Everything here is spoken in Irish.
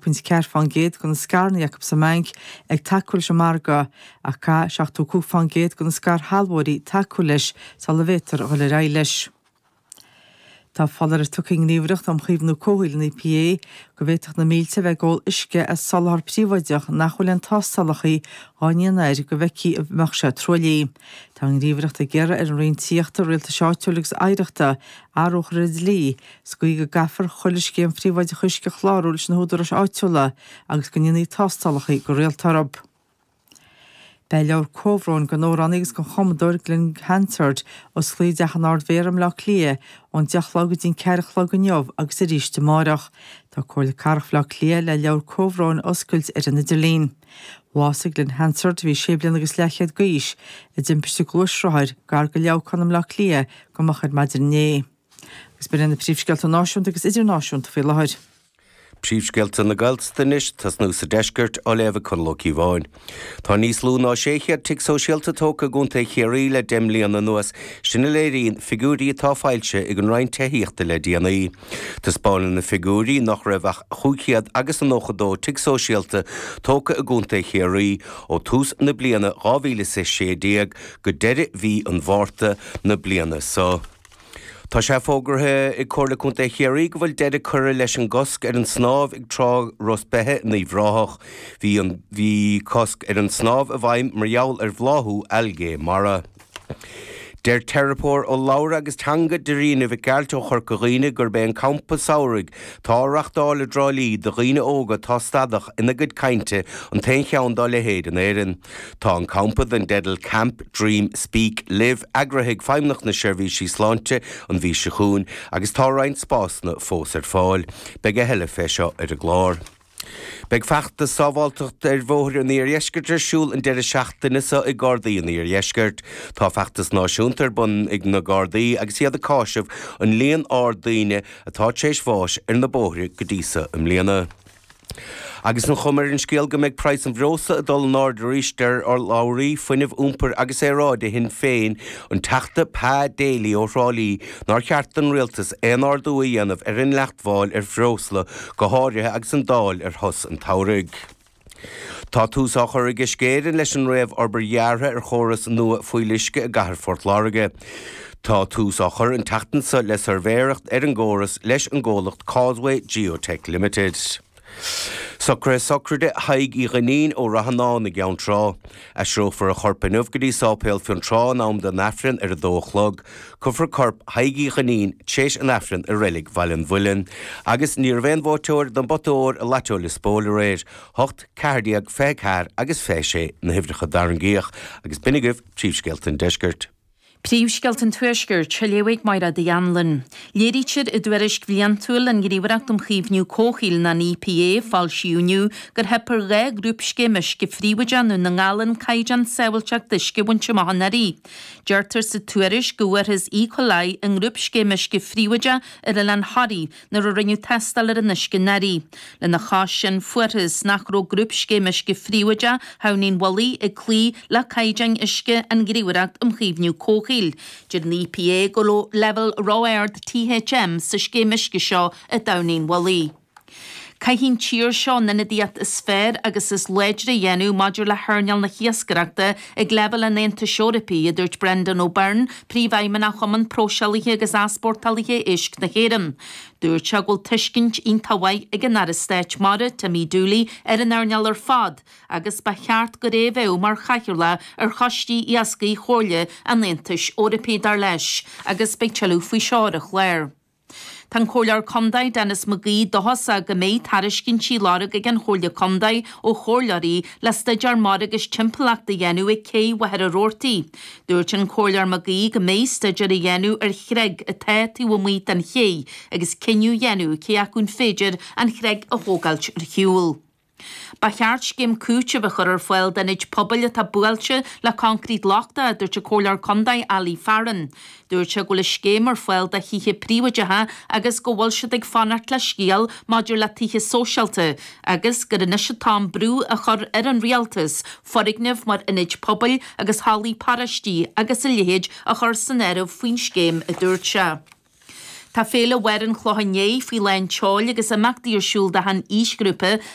pointe 4 fán gcéad de na scaireanna acu sa mBanc ag tacú leis an margadh, ach caithfidh 75 fán gcéad de na scairshealbhóirí tacú leis sula bhféadtar a dhul ar aghaidh leis. Tá foláireamh tugtha ag an nGníomhaireacht um Chaomhnú Comhshaoil, an EPA, go bhféadfadh na mílte a bheith ag ól uisce as soláthar príobháideach nach bhfuil aon tástálacha á ndéanamh air go bhfeicfí an mbeadh sé truaillithe. Tá an Ghníomhaireacht ag iarraidh ar an Roinn Tithíochta, Rialtais Áitiúil agus Oidhreachta athrú a chur ar an dlí sa gcaoi go gcaithfear chuile scéim phríobháideach uisce a chlárú leis na húdaráis áitiúla agus go ndéanfaí tástálacha go rialta orthu. Beidh leabhar comhbhróin don amhránaí agus don chumadóir Glen Hansard, oscailte i dTeach an Ardmhéara i mBleá Cliath, ón deich a chlog go dtí an ceathair a chlog inniu agus arís amárach. Tá Comhairle Cathrach Bhleá Cliath le leabhar comhbhróin a oscailt ar an idirlíon. Bhásaigh Glen Hansard, a bhí sé bliana agus leathchéad d'aois, i dtimpiste gluaisrothair gar do Leamhcán i mBleá Cliath go moch ar maidin inné. Agus b'in iad na príomhscéalta náisiúnta agus idirnáisiúnta faoi láthair. Príomhscéalta na Gaeltachta anois, tosnú sa deisceart á léamh ag Conall Ó Cíobháin Tá níos lú ná 600 tigh sóisialta tógtha i gContae Chiarraí le deich mbliana anuas, sin a léiríonn figiúirí atá foilsithe ag an Roinn Tithíochta le déanaí. Taispeánann na figiúirí nach raibh ach cúig chéad agus a nócha dó tigh sóisialta tógtha i gContae Chiarraí ó tús na bliana 2016 go deireadh mhí an Mhárta na bliana seo. Tá sé fógartha ag Comhairle Contae Chiarraí go bhfuil deireadh curtha leis an gcosc ar an snámh ag trá Ros Beithe in Uíbh Ráthach. Bhí, bhí cosc ar an snámh i bhfeidhm mar gheall ar bhláthú algae mara. Deir teiripeoir urlabhra agus teanga Darina Mhic Gearailt ó Chorca Dhuibhne gurb é an campa samhraidh atá á reachtáil i dTrá Lí do dhaoine óga atá stadach ina gcuid cainte an t-aon cheann dá leithéid in Éirinn. Tá an campa dén teideal Camp, Dream, Speak, Live eagraithe ag Feidhmeannacht na Seirbhísí Sláinte an mhí seo chugainn agus tá roinnt spásanna fós ar fáil. Beidh a thuilleadh fé seo ar an gclár. Beidh feachtas sábháilteacht ar bhóithre an Iardheiscirt ar siúl an deireadh seachtaine seo ag Gardaí an Iardheiscirt. Tá feachtas náisiúnta ar bun ag na Gardaí agus iad ag cásamh an líon ard daoine atá tar éis bháis ar na bóithre go dtí so i mbliana. Agus an chuma ar an scéal go mbeidh praghas an bhreosla ag dul in airde arís, deir urlabhraí Fuinnimh, Iompair agus Aeráide Shinn Féin, an Teachta Pa Daly ó Thrá Lí, nár cheart don Rialtas aon ardú a dhéanamh ar an gcáin mháil ar bhreosla, go háirithe agus an Dáil ar shos an tsamhraidh. Tá tús á chur ag Uisce Éireann leis an réamh-fhorbairt dheartha ar chóras nua fuíolluisce i gCathair Phort Láirge. Tá tús á chur an tseachtain seo le suirbhéireacht ar an gcóras leis an gcomhlacht Causeway Geotech Limited. Socruithe Sochraide Thaidhg Uí Dhuinnín ó Ráthanáin i gCeann Trá. Aistreofar a chorp inniu go dtí Sáipéal Fionntrá in am don Aifreann ar 2 a chlog. Cuirfear corp Thaidhg Uí Dhuinnín t'réis an Aifrinn i reilig Bhaile an Mhuilinn. Agus ní raibh aon bhuaiteoir don bpota óir i Lató Liospóil aréir. Hocht, ceathair déag, fiche ceathair agus fiche sé na huimhreacha a tarraingíodh. Agus b'in agaibh príomhscéalta an deiscirt. Príomhscéalta an Tuaiscirt, á léamh ag Máiread Uí Annluain. Léirítear i dtuairisc bhliantúil an Ghníomhaireacht um Chaomhnú Comhshaoil, nó an EPA, a foilsíodh inniu gur theip ar dhá ghrúpscéim uisce phríobháideach i nDún na nGall an caighdeán sábháilteachta uisce a bhaint amach anuraidh. Deirtear sa tuairisc go bhfuarthas E. coli i ngrúpscéim uisce phríobháideach ar oileán Thoraí, nuair a rinneadh tástáil ar an uisce anuraidh. Lena chois sin, fuarthas nach raibh grúpscéim uisce phríobháideach Thamhnaigh an Mhullaigh ag cloí le caighdeáin uisce an Ghníomhaireacht um Chaomhnú Comhshaoil. Deir an EPA go raibh leibhéal ró-ard THM sa scéim uisce seo i dTamhnaigh an Mhullaigh. Caithfidh an tír seo an ionadaíocht is fearr agus is láidre a dhéanamh maidir le hearnáil na hiascaireachta Ag leibhéal an Aontais Eorpaigh, a dúirt Brendan O'Byrne, Príomhfheidhmeannach Chumann Próiseálaithe agus Easpórtálaithe Éisc na hÉireann, dúirt sé go bhfuil tuiscint iontach mhaith ag an Aire Stáit Mara, Timmy Dooley, ar an earnáil ar fad agus ba cheart dó a bheith mar chathaoirleach ar Choistí Iascaigh Chomhairle an Aontais Eorpaigh, dar leis, agus beidh tuilleadh faoi seo ar an chlár. Tá an Comhairleoir Contae Denis McGee dóchasach go mbeidh tairiscintí á lorg ag an Chomhairle Contae ó Chomhairleoirí le stuidéar mara agus timpeallachta a dhéanamh ag Cé Mhachaire Rabhartaigh. Dúirt an Comhairleoir McGee go mbeidh stuidéar á dhéanamh ar chreig atá taobh amuigh den Ché agus cinneadh á dhéanamh cé acu an féidir an chreig a thógáilt ar shiúl. Ba cheart scéim cúitimh a chur ar fáil d'ionaid pobail atá buailte le coincréit lochtach, a dúirt an Comhairleoir Contae Ali Farren. Dúirt sé go bhfuil scéim ar fáil do thithe príobháideacha agus go bhfuil siad ag fanacht le scéal maidir le tithe sóisialta agus gur anois an t-am brú a chur ar an Rialtas foirgnimh mar ionaid pobail agus hallaí paróistí agus a leithéid a chur san áireamh faoin scéim, a dúirt sé. Tá Féile Mháire an Chlocháin Léith faoi lán tseoil agus imeachtaí ar siúl d'achan aoisghrúpa